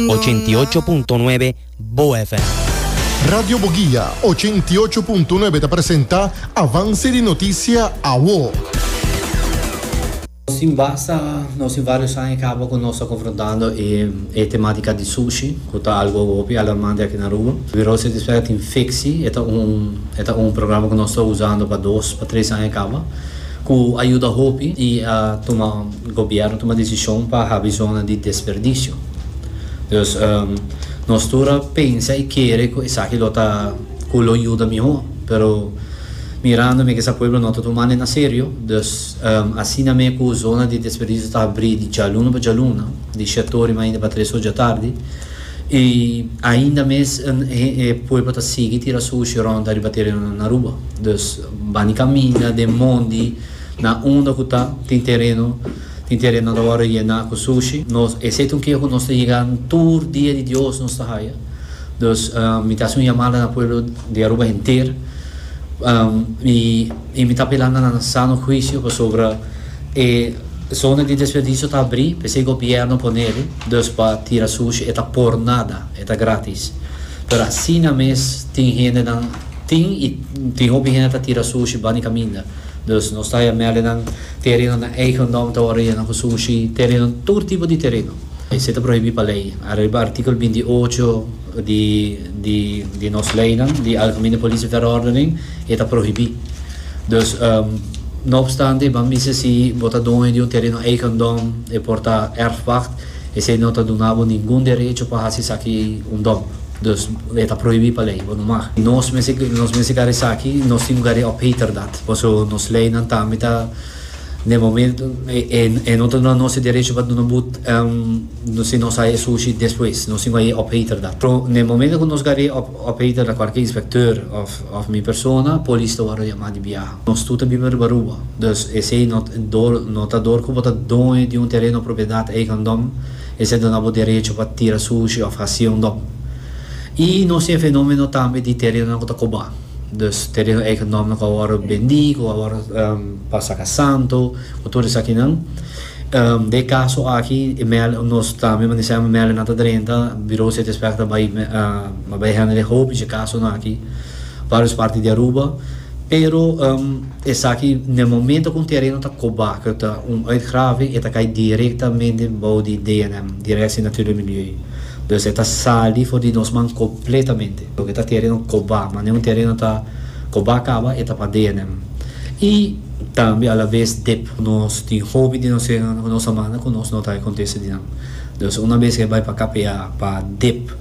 Ochenta i ocho punto nuebe Bo FM. Radio Boguia ochenta i ocho punto nuebe ta presenta Avance di Noticia Awo. Sin basta, nos tin varios aña caba cu nos ta confrontando e tematica di sushi, cu ta algo hopi alarmante aki na Aruba. Virose despues a tin Fixi, e ta un programa cu nos ta usando pa dos pa tres aña caba. Cu a yuda hopi y a tuma gobierno tuma decision pa habi zona di desperdicio. Dus nos tur a pensa y kere cu esaki lo ta cu lo yuda miho. Pero mirando mi cu sa pueblo no ta tumando e na serio, dus asina me cu zona di desperdicio ta habri di djaluna pa djaluna, di shetori mainta pa tres oja tardi y ainda mes e pueblo ta sigui tira sushi rond ariba terenonan Aruba. Dus. Ban di kaminda den mondi na unda ku ta tin tereno. Tin terenonan ta wòrdu yená ku sushi. Nos, esei ta un keo ku nos ta yega tur dia di Dios nos ta haya. Dus mi ta hasi un yamada na pueblo di Aruba henter i i mi ta apelá na nan sano huisio pasobra e zona di desperdisio ta abrí p'esei gobièrnu a pone eli. Dus pa tira sushi e ta por nada, e ta grátis. Pero asina mes tin hendenan Tin y tin hopi hende ta tira sushi bani caminda. Dus nos ta ya mele nan tereno na eigen dom ta worde yena cu sushi, tereno, tur tipo di tereno. Esey ta prohibi pa ley. Ariba artikel binti i ocho di di di nos leynan, di Algemene Politieverordening, e ta prohibi. Dus, no obstante, e ban bisa si bo ta doño di un tereno eigen dom, e por ta erfpacht. Esei no ta duna bo ningun derecho pa hasi esaki un dòmp. Dus, e ta prohibí pa lei, bo no mag. Nos mester nos mester kari esaki, nos tin ku kari e opheter dat, paso nos leinan tambe ta den momento e e no ta duna nos e derecho pa duna but si nos haya e sushi despues, nos tin ku haya e opheter dat. Pero den momento ku nos kari e opheter dat, kualke inspector òf òf mi persona, polis ta wòrdu yamá di biaha. Nos tur ta biba riba Aruba, dus esei no dor no ta dor ku bo ta doño di un tereno propiedat eigendom, esei duna bo derecho pa tira sushi òf hasi un dòm. I nos tin e fenómeno tambe di terenonan ku ta kobá, dus tereno eigendòmnan ku a wòrdu bendí, ku a wòrdu pa saka santu, ku tur esakinan. Den e kaso aki e mèl nos tambe mester hèm mèlenan ta drenta, Bureau City Inspector a bai a bai hèndel e hopi dje kasonan aki, vários parti di Aruba. Pero esaki n'e momento ku un tereno ta kobá ku ta un uitgraving e ta kai direktamente bou di DNM, Directie Natuur en Milieu. Dus e ta sali for di nos man kompletamente pasobra ta tereno kobá, ma n'e un tereno ta kobá kaba e ta pa DNM. I tambe alabes dep ku nos tin hopi di nos terenonan ku nos a manda ku nos no ta e kontesta di nan. Dus una bes ke bai pa KPA, pa dep.